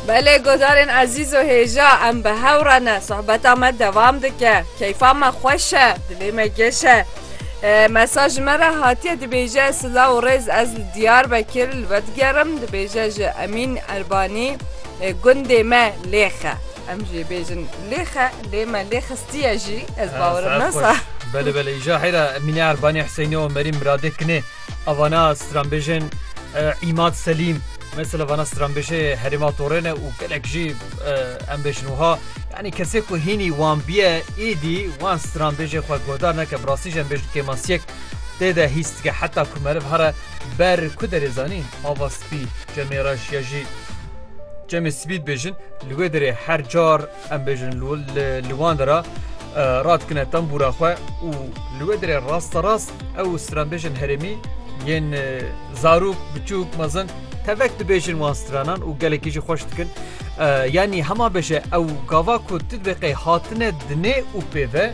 Belê guhdarên ezîz û hêja em bi hev re ne. Sohbeta me devam dike. Keyfa me xweş e, dilê me geş e. Mesaj ji me re hatiye dibêje silav û rêz ez li Diyarbekir li we digerim dibêje ji Emîn Erbanî gundê me lêxe. Em jê bêjin lêxe lê me lê xistiye jî ez bawerim nasa. Belê belê îja heyra Emîne Erbanî Hüseyinê û Merîm Miradê kinê. A vana stranbêjên Îmad Selîm mesela vana stranbêjê herêma Torê ne û gelek jî em bêjin wiha yanî kesê ku hînî wan bîye êdî wan stranbêjê xwe guhdar neke bi rastî jî em bêjin kêmasiyek tê de hîs dike heta ku meriv here ber ku derê zanî ava spî cemê reş ya jî cemê sibî dibêjin li wê derê her car Em bêjin li wan de re radikine tembûra xwe û li wê derê rasterast ew stranbêjên herêmî yên zarok, biçûk, mezin tevek dibêjin wan stranan û gelekî jî xweş dikin. Yanî hema bêje ew gava ku tu dibê qey hatine dinê û pê ve.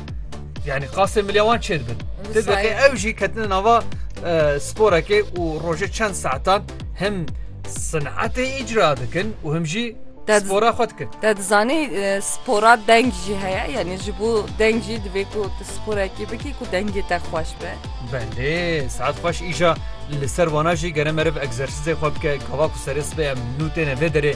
Yani qasê milya wan çêr bin. Ti deke ew jî ketine nava sporekê û rojê çend saetan him sinetê îcra dikin û him jî spora xwe dikin. Te dizanî spora deng jî heye yani ji bo deng jî divê ku tu sporekî bikî ku dengê te xweş be. Belê saet xweş îja li ser wana jî gere meriv egzersîzê xwe bike gava ku serê sibê em nû têne vê derê